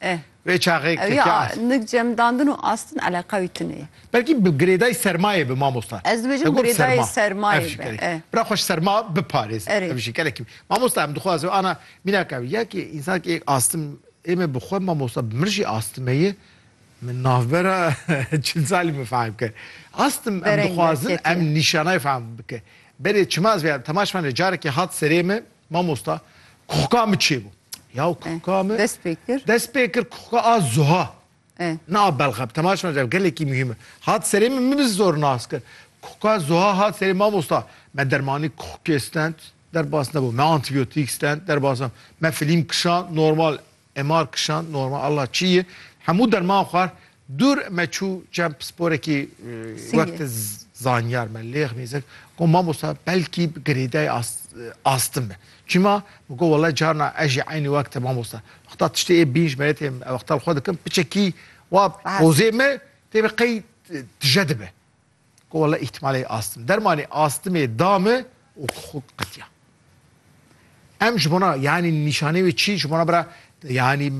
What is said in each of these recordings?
Eh. Vê çaxê Ew ya keke ast. nik cemdandin û astin eleqa wî tune ye. Belkî bi girêdayî sermayê bi mamosta. Ez dibêjim Te got girêdayê serma. sermayê Ev jî be, gelekî. eh. Bira xwe ji serma biparêz. Erê. Ev jî gelekî. Mamosta em dixwazin ana mînaka wî ya ki însan ki êk astim ê me bi xwe mamosta bi min jî astime ye. Min navbera çil salî min fehm kir. Astim em Bereng dixwazin derketiye. em nîşanayê fehm bike. Berê çima ez vêya temaş fane carekê hat serê me. Mamosta kuxka min çêbû. Ya kuxka min dest pê kir. Dest pê kir kuxka a zuha. Na a belxa bi temaş me ev gelekî muhîm e. Hat serê min min bi zor nas kir. Kuxka zuha hat serê mamosta. Me dermanî kuxkê stend derbas nebû. Me antîbiyotîk stend derbas nebû. Me filîm kişand normal Emar kişand normal Allah çi yi hemû derman xwar dûr me çû çem pisporekî wek te zanyar me lêx nêzek got mamosta belkî bi girêdayî astin be çima min got wele carna ez jî eynî wek te mamosta wexta tiştê ê bîn ji me tê wexta li xwe dikim piçekî wa pozê me tê be qey tije dibe. Ku wela îhtimalê astim. Dermanê astimê da min û xwe qitiya. Em ji bona yanî nîşanê wê çi ji bona bira yanî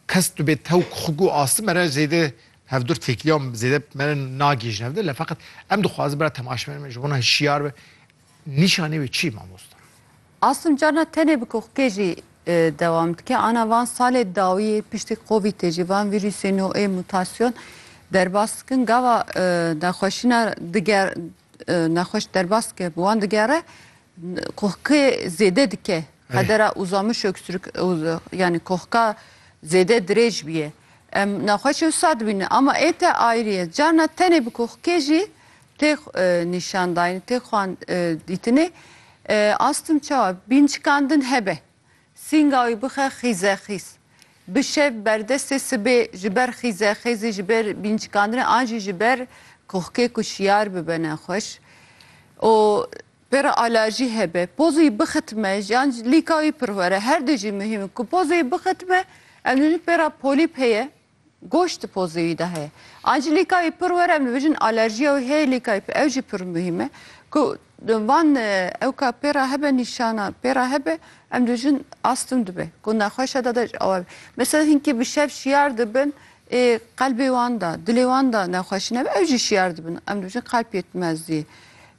kes tu bê tewk xwe ku astim mere zêde hevdur têkiliya zêde mere nagêjin hevdir le feqet em dixwazin bira temaşemenê me ji bona hişiyar be nîşanê wê çi mamosta? Asûm carna tenê bi koxkê jî dewam dike. Ana van salê dawî yê piştî Covidê jî van vîrûsê nû ê mûtasyon derbas dikin. Gava nexweşîna diger nexweş derbas dike bi wan digere koxkê zêde dike. Qedera uzamiş öksürük yanî koxka zêde dirêj bîye. Em nexweşê wisa dibînin ama ê te ayrî ye. Carna tenê bi koxkê jî Tê nîşandayîn, tê xwan dîtinê. Astim çawa? Bîncikandin hebe. Sînga wî bixe xîzexîz. Bi şev berdestê sibê ji ber xîzexêzî, ji ber bîncikandinê an jî ji ber kohkê ku şiyar bibe ne xweş û pê re alerjî hebe. Pozê wî bixitime yan lîka wî pir were. Her du jî muhîm in ku pozê wî bixitime. Em dibînin pê re polîp heye. Goşt di pozeyî de heye. Angelîkayî pir were em dibêjin alerjîya wê heye lîkayî pê ew jî pir muhîm e ku van ew ka pê re hebe nîşanan pê re hebe em dibêjin astim dibe ku nexweşa de de ji awe be. Mesela hinkî bi şev şiyar dibin ê qelbê wan de dilê wan de nexweşî nebe ew jî şiyar dibin em dibêjin qelb yetmezdî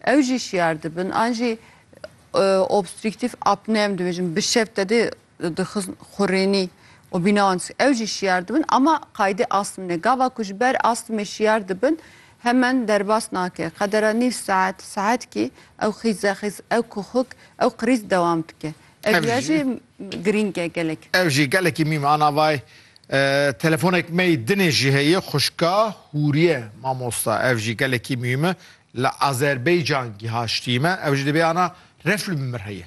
ew jî şiyar dibin an jî obstrîktîf apne em dibêjin bi şev te dê dixizn xurênî û bîna wan dîs ew jî şiyar dibin ama qayde astm ne. Gava ku ji ber astmê şiyar dibin hemen derbas nake. Qedera nîv saet, saetkî ew xîze xîz, ew kuxuk, ew qirîz dewam dike. Ev Ev riya jî- jî girîng e gelek. Ev jî gelekî mîm a navayê. Telefonek me yê dinê jî heye xwişka Hûriye mamosta ev jî gelekî mîm e li Azerbeycan gihaştî me ew jî dibê ana refl bi mir heye.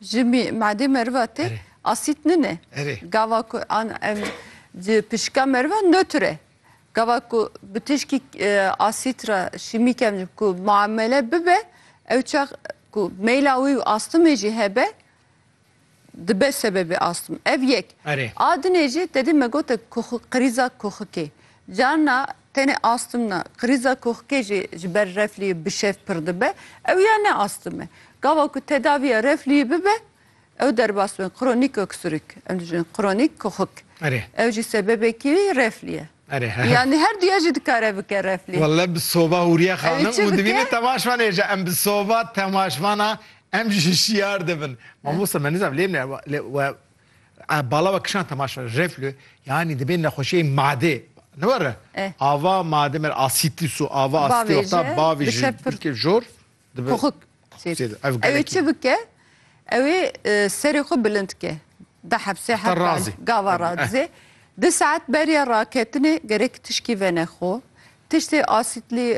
Ji madê meriva tê asît nine. Gava ku an em di pişika meriva nötr e. Gava ku bi tişkî asît re şîmîk em ku muamele bibe ew çax ku meyla wî û astimê jî hebe dibe sebebê astim. Ev yek. A dinê jî tedî me gote krîza koxikê. Carna tenê astimna krîza koxkê jî ji ber refliyê bi şev pir dibe, ew ya ne astim e. Gava ku tedaviya refliyê bibe, ew derbas bên kronîk oksûrik, em dijîn kronîk koxik. Erê. Ew jî sebebekî reflî ye. Erê. Yanî her duya jî dikare bike reflî. Welle bi soba Hûriye xanim û divîne temaşvan ê ji em bi soba temaşvana em ji şiyar dibin. Mamosta me nizam lê me we A bala we kişan temaşa reflü yani dibê nexweşiyê made ne were Eh. ava made mer asitis û ava Bavê asitê wexta jî bavê ji dike pir- dilkê jor dibe Poxuk. Poxuk zêde. Ev Ew ê gelekî. çi bike? Ew ê e, serê xwe bilind bike. Di hepsê Heta heta razê. gava Eh. razê. Di saet beriya raketinê gerek tişkî venexo. Tiştê asîtlî,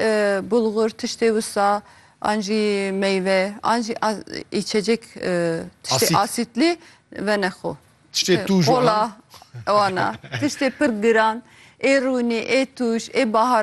bulgur, tiştê wisa an jî meyve an jî îçecek tiştê asîtlî vene xwe. Tiştê tûj wana. Wana. Tiştê pir giran ê rûnî, ê tûj, ê baharat.